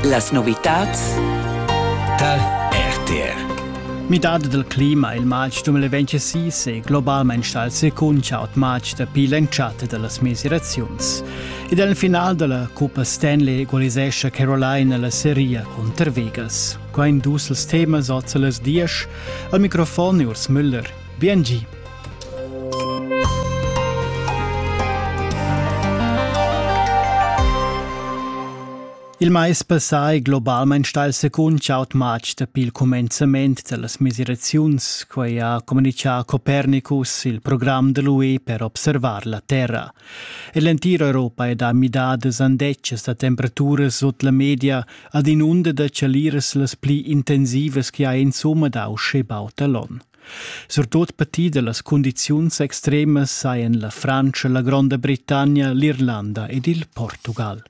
Las novitads tar RTR. Midada dal clima il matg 2026 è globalmain stal secuncha at matg dapi l'entschatta da las mesiraziuns. Ed al final da la Coppa Stanley equalisescha Caroline la seria cunter Vegas. Qua in dus els temas oz a las 10. Al microfon Urs Müller Biengi. Il mais passà è globalmain stal secund chaut matg dapi il cumenzament da las mesiraziuns, quai ha communitgà Copernicus, il program da l'UE per observar la Terra. En l'entir Europa è da midadas andetgas da temperaturas sut la media ad inunda da chaliras las pli intensivas che ha insomma dau schebau talon. Surtot pati dallas condiziuns extremas saien la Francia, la Gronda Britannia, l'Irlanda ed il Portugal.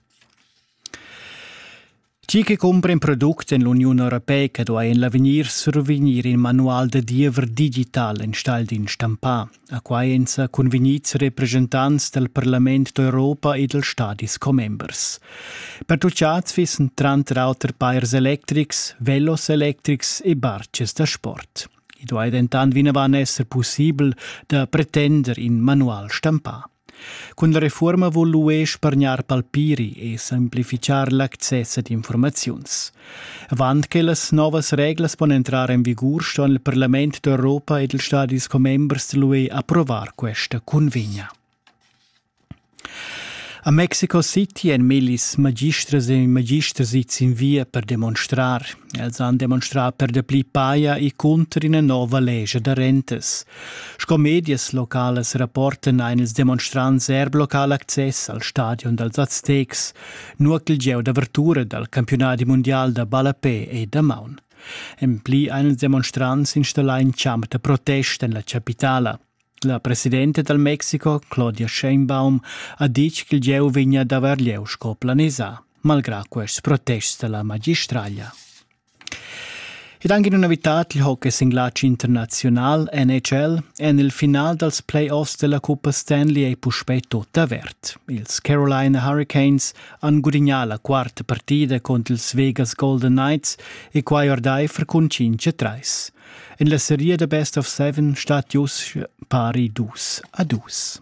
Tgi che cumpra in product en l'Uniun Europeica do en l'avegnir survegnir il manual da diever digital enstagl d'in stampà. A quai èn sa cunvegnids represchentants dal Parlament d'Europa e dals stadis commembers. Pertutgads fissen tranter auter pairs electrics, velos electrics e bartges da sport. I duai dentant vinavant esser pussibel da pretender in manual stampà. Cun la refuorma vul l'UE spargnar palpiri e semplifichar l'access ad informaziuns. Avant che las novas reglas pon entrar en vigur, ston il Parlament d'Europa ed ils stadis commembers dell'UE approvar questa convegna. A Mexico City èn millis magisters e magisters ids in via per demonstrar. Els han demonstrà per dapli paja e cunter ina nova legia da rentas. Sco medias localas rapportan ein ils demonstrants er local access al stadion dals Aztecs, nua ch'il gieu d'avertura dal campiunadi mundial da ballapé ei damaun. En pli ein ils demonstrants installai in champ da protest en la capitala. La presidenta dal Mexico, Claudia Sheinbaum, ha ditg ch'il gieu vegnia da var leu sco planisà, malgrà quests protests da la magistraglia. Ed anche in novitad il hockey sin glatsch internaziunal NHL en il final dals playoffs della Coppa Stanley è puspè tut avert. Ils Carolina Hurricanes han gudignà la quarta partida contro ils Vegas Golden Knights e quai ordaifer cun 5-3. En la seria da Best of Seven stat Jus pari dus a dus.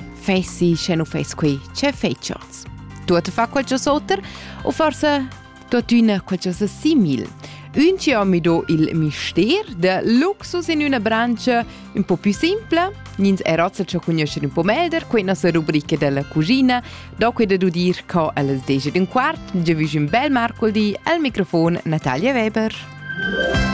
Fessi, sche nu fes qui, che fecials? Tu te fa qualcosa oter o forse tuttina qualcosa simil? Un ci ho mi do il mister de luxus in una brancha un po' più simple, nins è razza ciò conosce un po' meglio, quella è la rubrica della cucina, do qui da dir che alle 10 d'un quart già un bel marcoldi al microfono Natalia Weber.